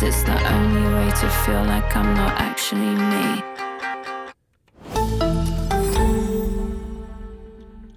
This the only way to feel like I'm not actually me.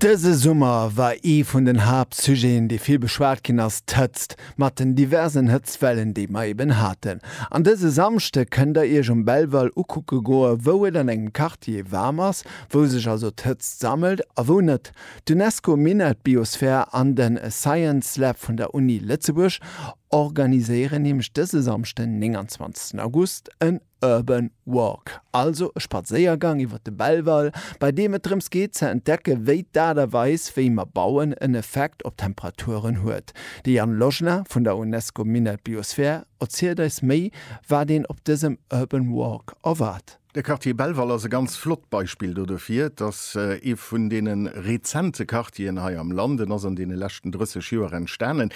Dëse Summer war ee vun den Haaptsujeten, dee vill beschwat ginn ass, d'Hëtzt, mat den diversen Hëtztwellen, déi mer eben haten. An dëse Samschde kënnt der Iech um Belval ukucke goe wou et an engem Quartier waarm ass, wou sech also d'Hëtzt sammelt a wou net. D'Unesco Minett Biosphere an den Science Lab vun der Uni Lëtzebuerg. organiséieren nämlech dëse Samschden 29 August en Urban Walk, also e Spadséiergang iwwer de Belval, bei deem et drëms geet ze entdecke wéi d'Aart a Weis wéi mer bauen en Effekt op d'Temperaturen huet. De Jan Lojna vun der UNESCO Minett Biosphär erzielt eis méi wat een op dësem Urban Walk erwaart. De Quartier Belval ass e ganz flott Beispill do dofir. Et ass ee vun deene rezente Quartieren hei am Land. En ass an deene leschten 30 Joer entstanen.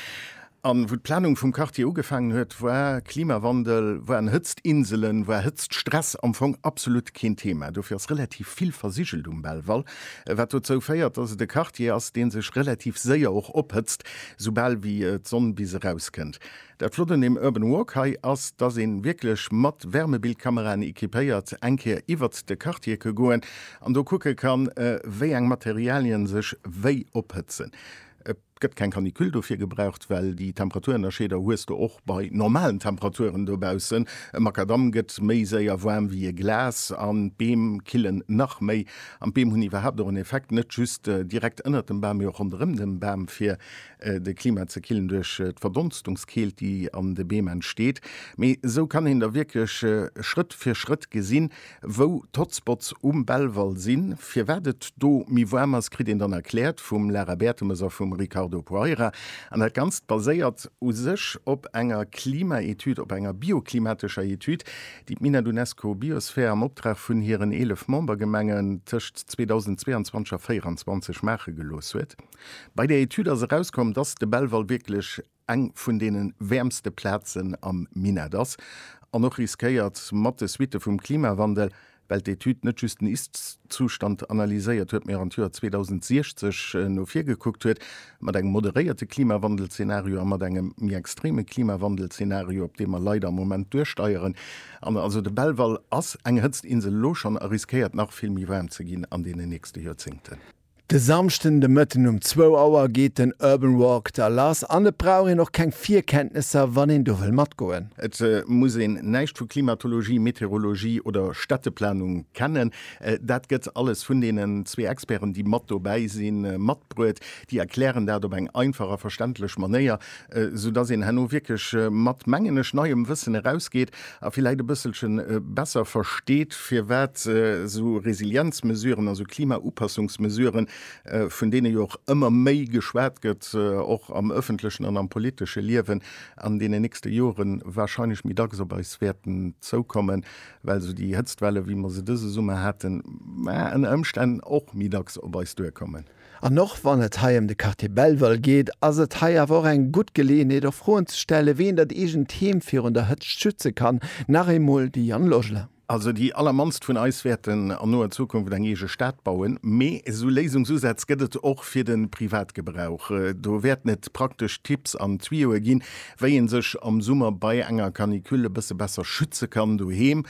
An wou d'Planung vum Quartier ugefaangen huet, war Klimawandel, waren Hëtztinselen, war Hëtztstress am Fong absolut keen Thema. Dofir ass relativ vill versigelt um Belval, wat dozou féiert, dass et e Quartier ass, dee sech relativ séier och ophëtzt, soubal wéi d'Sonn bis erauskënnt. Dat Flott un deem Urban Walk hei ass, dass ee wierklech mat Wärmebildkameraen equipéiert eng Kéier iwwert de Quartier ke goen an do kucke kann, wéi eng Materialien sech wéi ophëtzen. Et gëtt keng Canicule dofir gebraucht, well déi Temperaturennerscheeder hues de och bei normalen Temperaturen dobaussen. E Makadamm gëtt méi séier waarm wéi e Glas an d'Beem killen nach méi. An d'Beem hunn iwwerhaapt och en Effekt, net just direkt ënnert dem Bam, mee och ronderëm dem Bam, fir de Klima ze killen duerch d'Verdonstungskeelt, déi an de Beem entsteet. Mee esou kann een da wierklech Schrëtt fir Schrëtt gesinn, Wou d'Hotspots um Belval sinn, firwat et do méi waarm ass, kritt een dann erkläert vum Lara Bertemes a vum Ricardo Poeira. An dat Ganzt baséiert u sech op enger Klimaetüd, op enger bioklimatescher Etüd, déi d'Mina d'Unesco Biosphere am Optrag vun hiren 11 Membergemengen tëscht 2022 a 2024 maache gelooss huet. Bei där Etüd ass erauskomm, dass de Belval wierklech eng vun deene wäermste Plazen am Minett ass an och riskéiert, mat de Suitte vum Klimawandel, well d'Etüd net just den Ist-Zustand analyséiert huet, mee och an d'Joer 2060 no vir gekuckt huet, mat engem moderéierte Klimawandel-Zenario a mat engem méi extreme Klimawandel-Zenario, op dee mer leider am Moment duersteieren. An also de Belval ass eng Hëtztinsel elo schonn a riskéiert nach vill méi waarm ze ginn an deenen nächste Joerzéngten. De Samschden de Mëtten um zwou Auer geet den Urban Walk da lass an et brauch een och keng Virkenntnesser, wann een do wëll matgoen. Et muss een näischt vu Klimatologie, Meteorologie oder Städteplanung kennen. Dat gëtt alles vun deenen zwee Experten, déi mat dobäi sinn, matbruet. Déi erklären dat op eng einfach a verständlech Manéier, esou dass een herno wierklech mat, mengen ech, neiem Wëssen erausgeet a villäit e bësselche besser versteet, firwat esou Resilienzmesuren, also Klimaupassungsmesuren, vun deene jo och ëmmer méi geschwat gëtt, och am öffentlechen an am politesche Liewen, an deenen nächste Jore wahrscheinlech méi dacks op eis wäerten zoukommen, well esou déi Hëtztwelle wéi mer se dëse Summer haten, ënner Ëmstänn och méi dacks op eis duerkommen. An och wann et hei ëm de Quartier Belval geet, ass et hei awer och eng gutt Geleeënheet och Froen ze stellen, wéi een dat eegent Heem virun der Hëtzt schütze kann. Nach eemol, de Yann Logeler. Also déi allermannst vun eis wäerten an noer Zukunft eng eege Stad bauen, mee esou Léisungsusätz gëtt et och fir de Privatgebrauch. Do wäerten et praktesch Tipps an Tuyauxe ginn, wéi ee sech am Summer bei enger Canicule e bësse besser schütze kann doheem,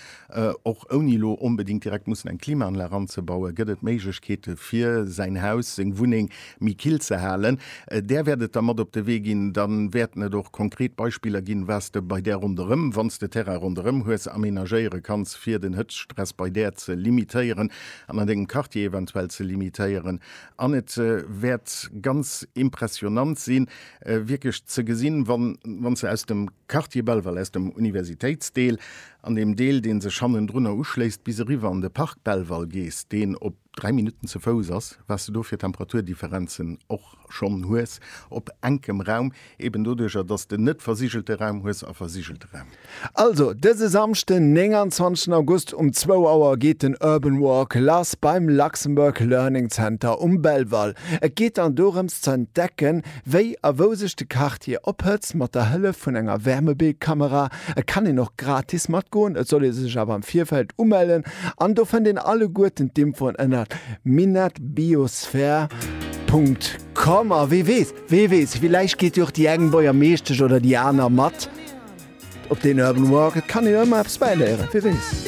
Och ouni elo onbedéngt direkt mussen eng Klimaanlag anzebauen, gëtt et Méiglechkeete fir säin Haus, seng Wunneng méi kill ze halen. Där wäert et da mat op de Wee ginn. Da wäerten et och konkret Beispiller ginn, wat s de bei där ronderëm, wann s de Terrain ronderëm hues, amenagéiere kanns, fir den Hëtztstress bei där ze limitéieren an an dengem Quartier eventuell ze limitéieren. An et wäert ganz impressionnant sinn, wierklech ze gesinn, wann s de aus dem Quartier Belval, aus dem Universitéitsdeel, An deem Deel, dee sech hannendrunner uschléisst, bis eriwwer an de Park Belval gees, deen op 3 Minutten ze Fouss ass, wat s de do fir Temperaturdifferenzen och schonn hues op enkem Raum, eben doduercher, dass s de net versigelte Raum hues a versigelte Raum. Also, dëse Samschden, 29 August um zwou Auer geet den Urban Walk lass beim Luxembourg Learning Center um Belval. Et geet dann dorëms ze entdecken, wéi a wou sech de Quartier ophëtzt, mat der Hëllef vun enger Wärmebildkamera. Et kann een och gratis matgoen, et soll ee sech awer am Virfeld umellen an do fënnt een alleguerten d'Infoen ënnert minetbiosphere.com. A wee weess, wee weess, villäicht geet jo och déi eng Boiermeeschtesch oder déi aner mat op deen Urban Walk. Et kann een jo ëmmer eppes bäiléieren, wee weess.